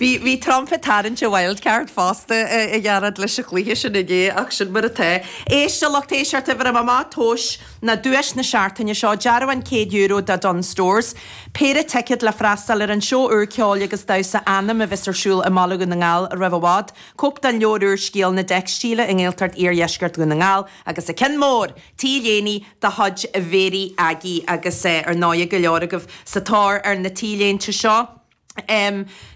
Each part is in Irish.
Bhí, bhí Trump ag tarraingt a wildcard fosta, a Ghearóid, leis an gcluiche sin inné, ach sin mar atá. Éist, a lucht éisteachta, uimhir a mama, tomhais ná duais na seachtaine seo, dearbhán €100 do Dunnes Stores, péire ticead le freastal ar an seó úr ceoil agus damhsa Anam a bheas ar siúl i mBaile Dhún na nGall roimh i bhfad, cóip den leabhar úr Scéal na dTeicstíle i nGaeltacht Iardheisceart Dhún na nGall, agus an ceann mór! t-léine de chuid Mhary Aggie agus ar ndóighe go leor agaibh sa tóir ar na t-léinte seo.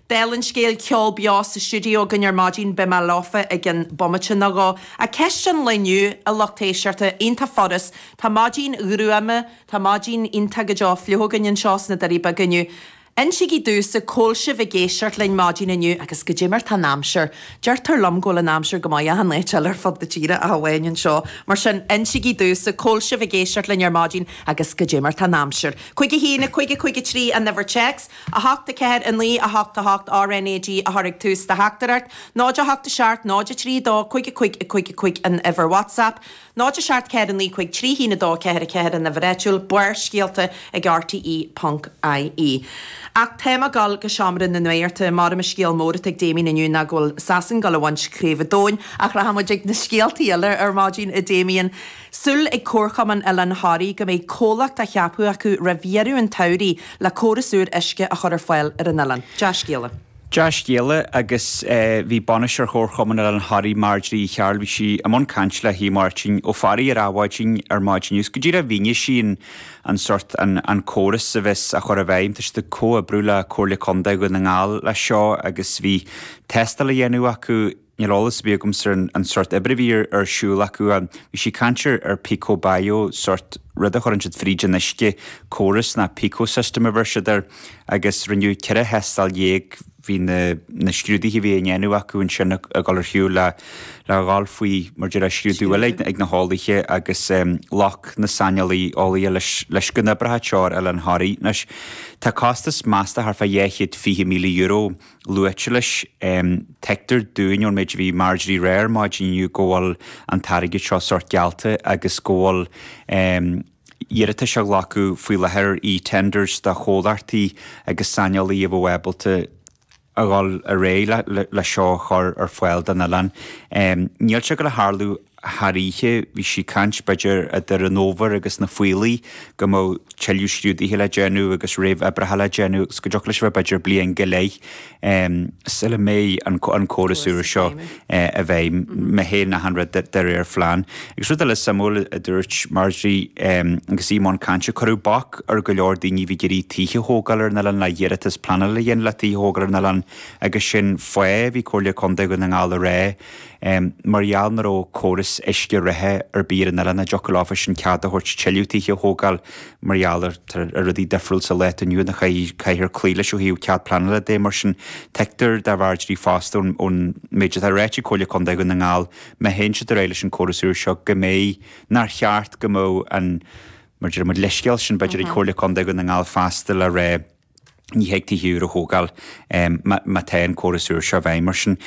Dála an scéil, ceol beo sa stiúideo againn ar maidin, beidh mé leofa i gcionn bomaite nó dhó. Á, ceist an lae inniu, a lucht éisteachta, iontach furast, tá maidin ghruama, tá maidin iontach go deo fliuch againn anseo sna Doirí Beaga inniu. Insígí domhsa cá bhfuil sibh ag éisteacht linn maidin inniu, agus goidé mar atá an aimsir, deirtear liom go bhfuil an aimsir go maith achan áit eile ar fud na tíre ach amháin anseo, mar sin, insígí domhsa cá bhfuil sibh ag éisteacht linn ar maidin agus goidé mar atá an aimsir. Cúig a haon, a cúig, a cúig a trí, an uimhir téacs, a hocht, a ceathair, a naoi, a hocht, a hocht, RNAG, a chur ag tús do theachtaireacht, 0, 8, 7, 0, 3, 2, 5, a cúig, a cúig, a cúig, an uimhir WhatsApp, 0 7 4 9 5 3 1 2 4 4 an uimhir áitiúil Barrscéalta ag rte ponc ie Ach tá mé ag gul go seomra na nuachta ar maidin an scéal mór atá ag Damien inniu ná go bhfuil Sasain ag gul a bhaint craobh an domhain Ach rachaidh muid ag na scéaltaí eile ar maidin a Damien Súil ag Comharchumann Oileán Thoraí go mbeidh comhlacht á cheapadh acu roimh dheireadh an tsamhraidh le córas úr uisce a chur ar fáil ar an oileán. Dea-scéala. Dea-scéala agus bhí bainisteoir Chomharchumann Oileán Thoraí Marjorie Uí Chearbhaill bhí sí i mbun cainte le hAodh Máirtín Ó Fearraigh ar Adhmhaidin ar maidin inniu is go díreach mhínigh sí an an sórt an an córas a bheas á chur i bhfeidhm. Tá siad ag comhoibriú le Comhairle Contae Dhún na nGall leis seo agus bhí tástáil á dhéanamh acu. Níl eolas ar bith agamsa ar an sórt oibre a bhí ar siúl acu. Bhí sí ag caint ar Pico Bayo, sórt rud a chuireann siad fríd an uisce, córas ná Pico System a bheir siad air, agus rinneadh ceithre thástáil dhéag. Bhí na scrúduithe a bhí á ndéanamh acu ansin ag dul ar shiúl le dhul faoi mar a déarfá scrúdú eile ag na heolaithe agus ghlac na saineolaí eolaithe leis go n-oibreodh sé ar oileán Thoraí. Anois, tá costas measta thart fá dhá chéad fiche míle euro luaite leis. Tuigtear dúinn ón méid a bhí Marjorie a rá ar maidin inniu go bhfuil an t-airgead seo sórt geallta agus go bhfuil iarratais á ghlacadh faoi láthair ar e-tenders do chomhlachtaí agus saineolaithe a bheadh ábalta a dhul ar aghaidh le seo a chur ar fáil don oileán. Níl sé ag gul a tharlú thar oíche. Bhí sí ag caint, b'fhéidir, idir an fhómhar agus na Faoillidh, go mbeadh tuilleadh staidéir le déanamh agus réamhoibreacha le déanamh agus go dtiocfadh leis a bheith, b'fhéidir, bliain go leith sula mbeidh an córas úr seo i bhfeidhm, má théann achan rud de réir plean. Agus rud eile suimiúil a dúirt Marjorie agus í i mbun cainte, cuireadh bac ar go leor daoine a bhí ag iarraidh tithe a thógáil ar an oileán le hiarratas pleanála a dhéanamh le tithe a thógáil ar an oileán agus sin faoi, bhí Comhairle Contae Dhún na nGall ag rá, mar gheall nach raibh córas uisce reatha ar bith ar an oileán a dtiocfadh leofa sin cead a thabhairt tuilleadh tithe a thógáil mar gheall ar rudaí difriúil sa lá atá inniu ann a chaithfear cloí leis ó thaobh cead pleanála de. Mar sin, tuigtear do Marjorie fosta ón méid atá ráite ag Comhairle Contae Dhún na nGall, má théann siad ar aghaidh leis an córas úr seo, go mbeidh, nár cheart go mbeadh an, mar deir muid, leithscéal sin, b'fhéidir, ag Comhairle Contae Dhún na nGall feasta le rá, ní thig tithe úra a thógáil má tá an córas úr seo i bhfeidhm, mar sin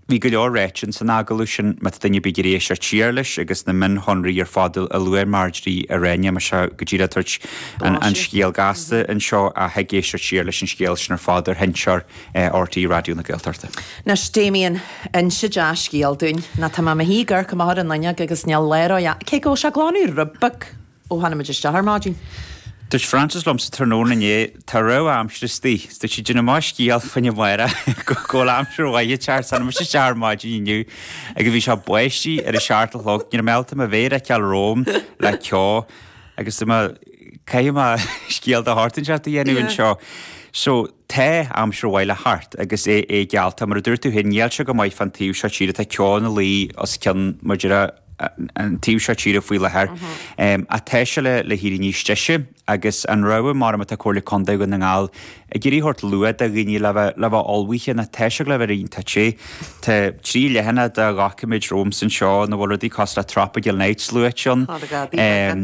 bhí go leor ráite san agallamh sin, má tá duine ar bith ag iarraidh éisteacht siar leis agus na mionshonraí ar fad a luaigh Marjorie, rinne mé seo go díreach ag tabhairt an scéil ghasta anseo, thig éisteacht siar leis an scéal sin ar fad ar sheinnteoir RTÉ Raidió na Gaeltachta. Anois, Damien, inis dea-scéal dúinn. Ná tá mé i mo shuí i gCorca Mháthair an Loinnig agus níl léaráid ann, cé go bhfuil sé glan úr, a bheith! Ó tháinig muid isteach ar maidin. Dúirt Frances liom tráthnóna inné, tá rabhadh aimsire istigh, is dúirt sí, Déan scéal faoi amárach go bhfuil aimsir mhaith ag teacht, is tháinig muid isteach ar maidin inniu agus bhí sé ag báisteach ar a seacht a chlog, níor mhó dom mo mhéar a fheiceáil romham le ceo agus dúirt mé, caithfidh mé scéal de shórt inteacht a dhéanamh anseo. So, tá aimsir mhaith le teacht agus é geallta, mar a dúirt tú féin, níl sé go maith fán taobh seo tíre, tá ceo ina luí os cionn Ghaoth Dobhair, an taobh seo tíre faoi láthair. Ach tá sé le héirí níos deise agus an rabhadh mar atá Comhairle Contae Dhún na nGall ag iarraidh a thabhairt luath do dhaoine le bheith le bheith ullmhaithe ná tá sé le bheith roinnt te. Tá trí leathanaigh de dhoiciméid romham anseo ina bhfuil rudaí cosúil le tropical nights luaite ann.